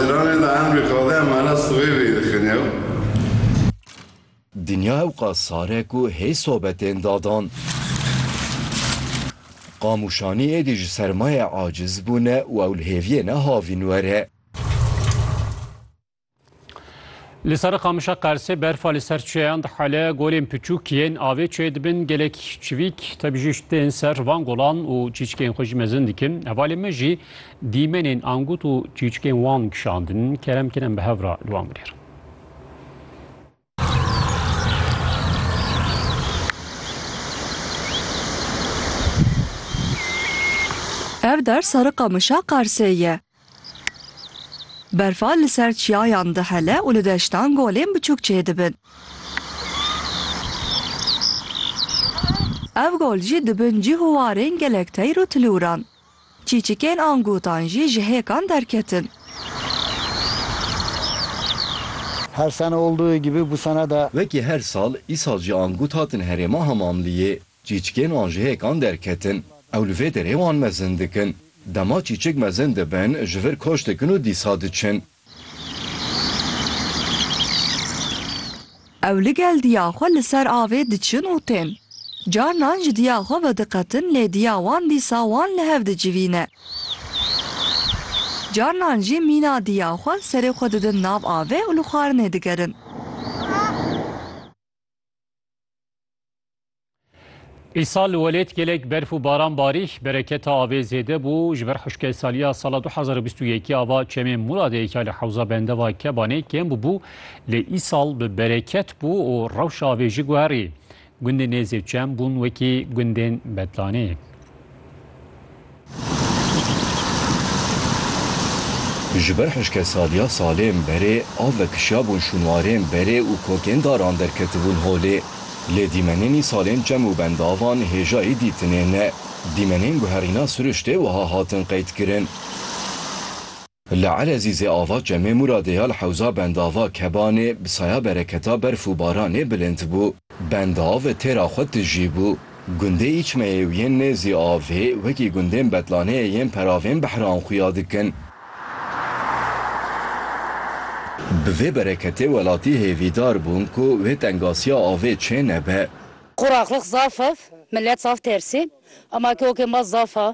Îranê de emrê qadê emana sivê vê dixine û. Dinya ewqa sar e ku hê sobetên dadan. Qamûşanî êdî ji sermayê aciz bûne û ew li hêviyê ne havîn were. Li ser qamişa Qersê berfa li ser çiyeyan dihale, golên piçûk yên avê çiyê dibin gelek çivîk tebijîşt tên ser van golan û çîçkên xwe jî mezin dikin. Hevalên me jî Dîmenên angut û çîçikên wan kişandin, kerem kin em bi hev re li wan bigêrin. Ev der serri qamişa Qarsê ye. Berfa li ser çiyayan dihele û li deştan golên biçûk çêdibin. Ev gol jî dibin cih û warên gelek teyr û tilûran. Çîçikên an gotan jî ji hêkan derketin. Her sene olduğu gibi bu sene de. Wekî her sal, îsal jî an gut hatin herêma Hamamliyê. Çîçikên an ji hêkan derketin. Ew li vê derê wan mezin dikin. Dema çîçik mezin dibin, ji vir koç dikin û dîsa diçin. Ew li gel diya xwe li ser avê diçin û tên. Carinan ji diya xwe vediqetin lê diya wan dîsa wan li hev dicivîne. Carinan jî mîna diya xwe serê xwe didin nav avê û li xwarinê digerin. Îsal li welêt gelek berf û baran barî, bereketa avê zêde bû. Ji ber hişkesaliya sala 2021 ya va çemê Muradeyeka li hewza bendeva Kebanê kêm bûbû, lê îsal bi bereket bû û rewşa avê jî guherî. Gundên nêzê çem bûn wekî gundên Bedlanê. Ji ber hişkesaliya salên berê av vekişiyabûn şûnwarên berê û kokên daran derketibûn holê. Lê dîmenênî salên çem û bendavan hêjayî dîtinê ne. Dîmenên guherîna siriştê wiha hatin qeydkirin. Li Elezîzê ava Çemê Mûradê ya li hewza bendava Kebanê bi saya bereketa berf û baranê bilind bû. Bendav têra xwe tijî bû. Gundê Îçmeyê û yên nêzî avê wekî gundên betlaneyê yên peravên behran xuya dikin. Bi vê bereketê welatî hêvîdar bûn ku wê tengasiya avê çê nebe. Quraxlıq zaf ev, milet zaf tersî. Ema ki okê ma zaf a,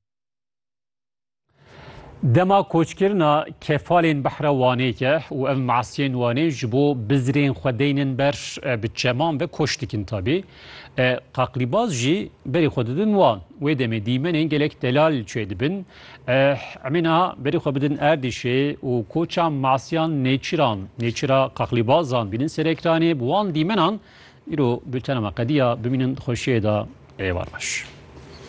Dema koçkirina kefalên behra Wanê ye û ev masiyên Wanê ji bo bizirên xwe deynin ber bi çeman ve koç dikin tabî. Qaqlîbaz jî berî xwe didin wan. Wê demê dîmenên gelek delal çê dibin. Emê niha berî xwe bidin Erdîşê û koça masiyan nêçiran, nêçira qaqlîbazan bînin ser ekranê bi wan dîmenan. Îro bültena me qediya bimînin di xweşiyê de êvar baş.